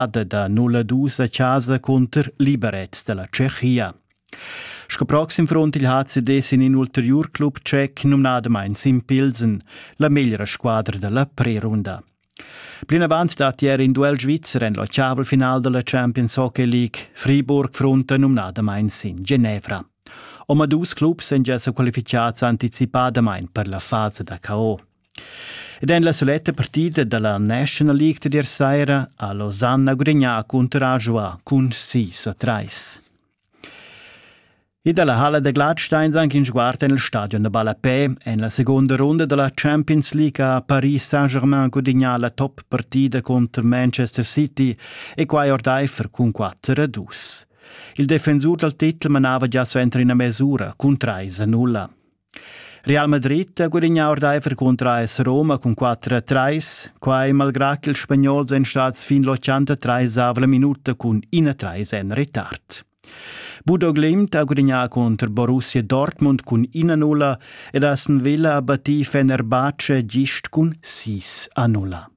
adeda 012 chasa cunter liberets della Tschechia. Sco proxim front il HCD sin in ulterior club tschec numnada Mainz in Pilsen, la meglra squadra della prerunda. Plinavant dat ier in duell svizzer en la Chavel-final della Champions Hockey League. Friburg fronta numnada Mainz in Genevra. Oma dus clubs èn gia sa qualificads anticipadamain per la fase da KO. Ed en la suletta partida dalla National League tier saira ha Losanna gudagnà cun Terragua cun sis a trais. E dalla halla da Gladstein anc in sguard en il stadion da Ballapè. En la seconda runda dalla Champions League ha Paris Saint-Germain gudagnà la top partida contro Manchester City e quai ordaifer cun quatter a dus. Il defensur dal titel manava gia suenter ina mesura cun trais a nulla. Real Madrid ha gudignà ordaifer cunter AS Roma cun 4-3, quai malgrà ch'ils Spagnols èn stads fin l'83 avla minuta cun 1-3 en retard. Budo Glimt ha gudignà cunter Borussia Dortmund cun 1-0 ed Aston Villa ha battì Fenerbahce gist cun 6-0.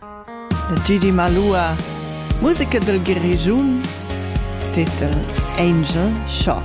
E Gidi Malua, musica dal Grischun, titel Angel Shot.